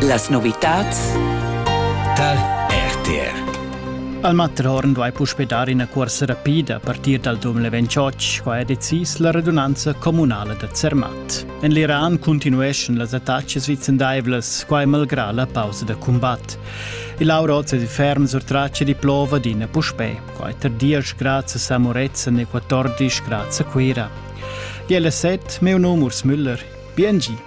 Las novitads tar RTR. Al Matrorn vai puspe dar ina cuorsa rapida a partir dal 2028, qua è decis la radunanza communala da Zermatt. En l'Iran continueschan las attacas vicendaivlas, qua è malgrà la pausa da combat. Il Aurozza di ferm sur traccia di plova d'ina puspè, qua è tardias grazie a Moretzen e 14 grazie a Cuira. Di LSZ, meu num Urs Müller. Biengi!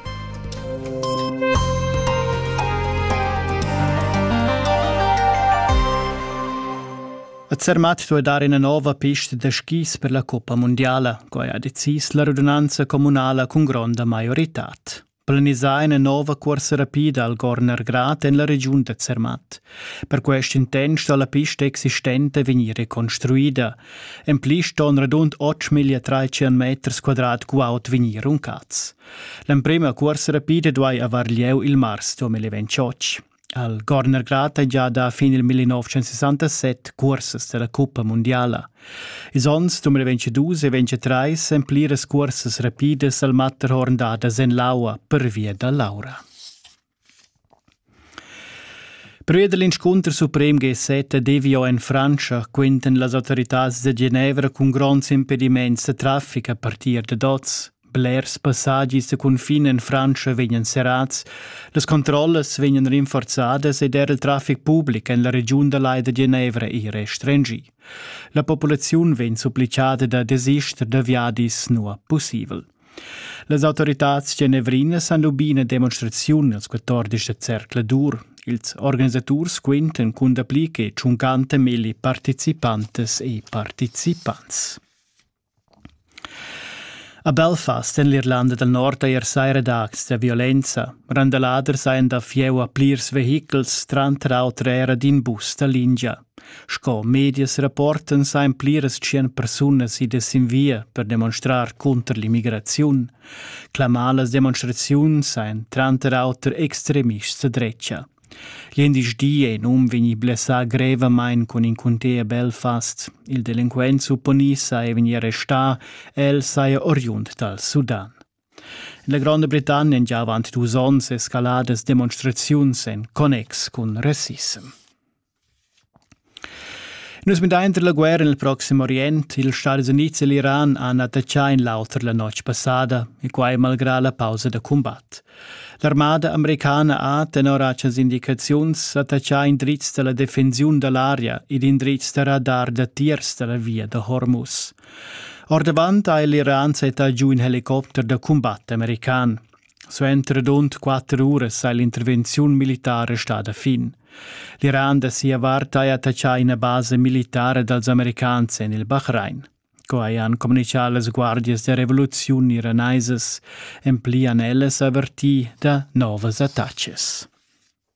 A Zermatt duai dar ina nova pista da skis per la coppa mundiala, quai ha decis la radunanza communala cun gronda maioritad. Planisà ina nova cuorsa rapida al Gorner Grad en la regiun da Zermatt. Per quest intent sto la pista existente vegnir reconstruida, En pli ston radund 8.300 meters quadrat guaud vegnir runcats. L'emprima cuorsa rapida duai aver lieu il mars 2028. Al Gornergrad è già da fin il 1967 cursas della Cuppa Mondiala. Is onns 2022 e 2023 en pliras cursas rapidas al Matterhorn dadas en l'aua per via da Laura. Prü dal inscunter suprem Gesetta devio in Frantscha quintan las autoritads da Genevra cun gronds impedimaints da trafic a partir dad oz. Blers passagis da cunfin en Frantscha vegnan serrats, las controllas vegnan rinforzadas ed er il trafic public en la regiun da Lai da Genevra è restringì. La populaziun vegn supplichada da desister da viadis nua pussibel. Las autoritads genevrinas han lubì ina demonstraziun ils 14 da zercla d'ur. Ils organisaturs quintan cun dapli che 50.000 participantas e participants. A Belfast en l'Irlanda del Nord ha er saira dags da violenza. Randaladers hajan da fieu a plirs vehichels, tranter auter era d'in bus da lingia. Sco medias rapportan sajan pliras tschient persunas idas sin via per demonstrar cunter l'immigraziun. Clamar las demonstraziuns sajan tranter auter extremists da drecha. Glindesdi è in um vegni blessà grevamain cun in cunter Belfast. Il delinquent supponì saja vegnì arrestà, el saja oriund dal Sudan. In la Gronda Britannia han già avant dus onns escaladas demonstraziuns en connex cun rassissem. Nus midain tar la guerra nel Proxim Orient. Ils Stadis Unids e l'Iran han attaccà in l'auter la notg passada, e quai malgrà la pausa da cumbat. L'armada americana ha, tenor actas indicaziuns, attaccà indrizs da la defensiun da l'aria ed indrizs da radar datiers da la via da Hormuz. Ordavant ha l'Iran settà giu in helicopter da cumbat american. Suenter rund quatter uras ha l'intervenziun militara stada fin. L'Iran da sia vart ha attaccà ina basa militara dals americans en il Bahrain. Quai han communitgà las guardias da revoluziun iranaisas, en pli han ellas avertì da novas attaccas.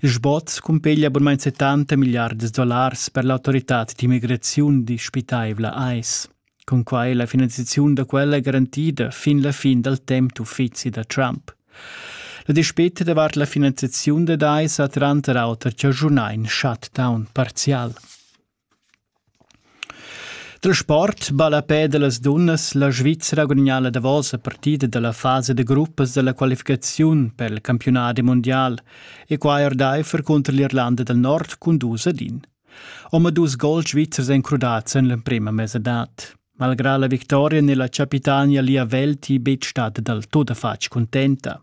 Il sbot cumpeglia bunmain 70 milliards dollars per l'autoritad d'immigraziun dispitaivla AIS. Cunquai la finanziaziun da quella è garantida fin la fin dal temp d'uffizi da Trump. La dispeta davart la finanziaziun dad AIS ha tranter auter chaschunà in shutdown parzial. Dal sport ballapè da las dunnas la Svizra gudagnà la davosa partida da la fasa da gruppas da la qualificaziun per il campiunadi mundial e quai ordaifer cunter l'Irlanda dal Nord cun dus ad in. Omadus gols svizzers èn crudads en l'emprima mesadad. Malgrà la victoria n'è la chapitania Lia Welti betg stada dal tut a fatg cuntenta.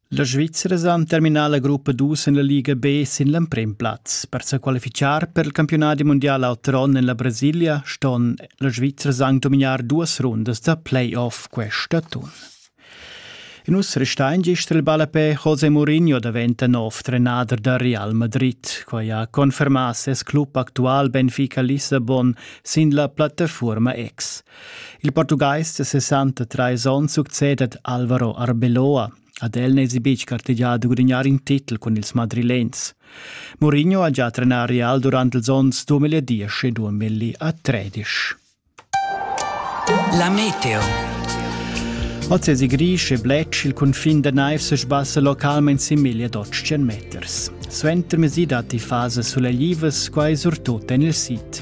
La Svizra ha terminà la gruppa dus en la Liga B sin l'emprim plaz. Per sa qualificar per il campiunat mundial auter onn en la Brasilia ston la Svizra anc dominar duas rundas da play-off questa atun. In us restain gist il ballapè José Mourinho daventa nov trenader da Real Madrid. Quai ha confermà ses club actual Benfica Lissabon sin la plattaforma X. Il portugais da 63 onns succedet Alvaro Arbeloa. Ad el n'esi betg gartegià da gudagnar in titel cun ils madrilens. Mourinho ha già trenà Real durant ils onns 2010 e 2013. La meteo. Oz è Grisch e Bletsch il cunfin da naiv se sbassa localment sin 1200 meters. Suenter mesi datti fase suleglivas, quai surtut en il sid.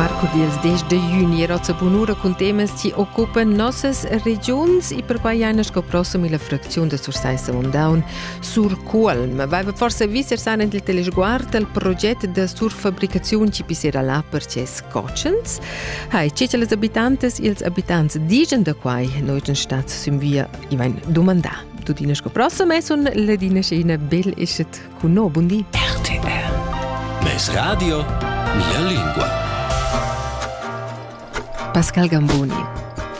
Marco dils 10 de juni era sa bunura cun temas chi occupen nossas regiuns e per pagliaina sco prossima la fracziun de Sursaissa Mondaun Sur Cuolm. Vaiva forse visser san il telesguard al proget de surfabricaziun ci pisera là per ces cocens. Hai, ci las abitantes ils abitants digen da quai noi den stat sün via i vain dumandà. tuttina sco prossimo e sun ledina scena bel eschet cun no bundi RTR Mes radio la lingua Pascal Gamboni